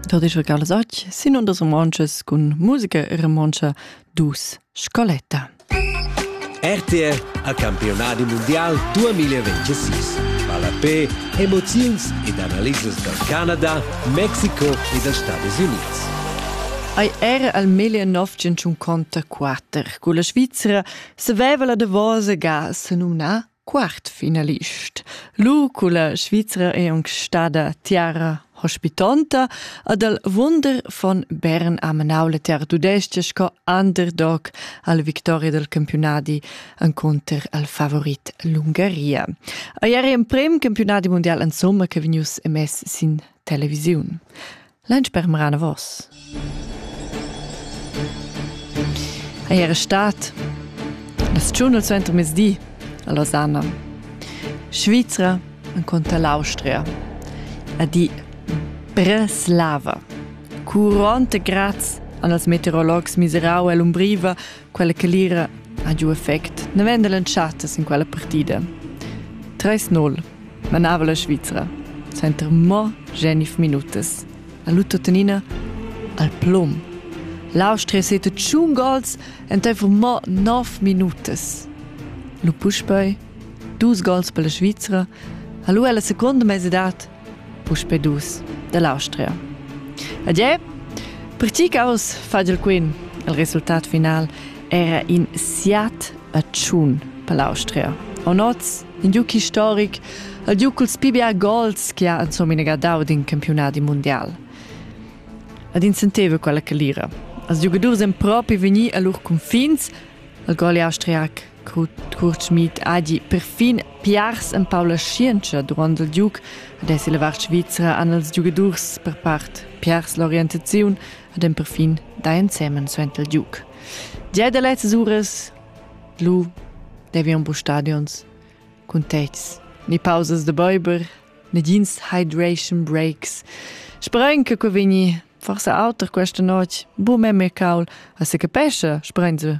Da disch regalas och sin undas romances cun musica e romontscha dus scoletta. RTR a campionadi mondial 2026. Palapé, emoziuns ed analisas dal Canada, Mexiko e dals Stati Units. Ei era al 1954 cu la Svizzera saveva la davosa gas numna Quart finalist. Lu culla Svizra è aunc stada tiara hospitonta ad el wunder von Bern a Manau le tiar tudestga sco underdog al victoria del campionadi enconter al favorit l'Ungaria. A ieri emprem campionadi mondial en somma che vegnius emess sin televisiun. Lunch permera anavos. Ei era stat la stagiun suenter mezdi a Lausanne, Svizra enconter l'Austria a di Breslava. Curante graz an als meteorologs miserau e l'umbriva quella calira ha giu effect naven dall'entschatta sin quella partida. 3-0 manava la Svizra center mo genif minutas. A Lutotenina al plum. L'Austria sete tschun gols enteifer mo 9 minutas. Lu puspei dus gols per la Svizra. Ha lu ella seconda mesedad Puspe dus dall'Austria. Adieu! Per ti caus fagel quin. Il resultat final era in siat a tschun per l'Austria. Onoz, in giuc historic, al giuc culs PBA gols che ha insomma inegardau d'in campionat mondial. Ad in senteva quella che lira. Als giocadurs en propi vegni a lur confins al gol austria Co Kurt Schmid ha gì perfin piars empau la schientscha duront il giug, ad esser la vart svizra han els giugadurs per part piars l'orientaziun ad en perfin da ensemen suenter il giug. Gia da lezzas uras lu devi un bu stadions cun tets, ni pausas da beuber, negins hydration breaks. Sperain che quei vegni forse auter questa notte. Bu meme caul, a se capesce, sperain se.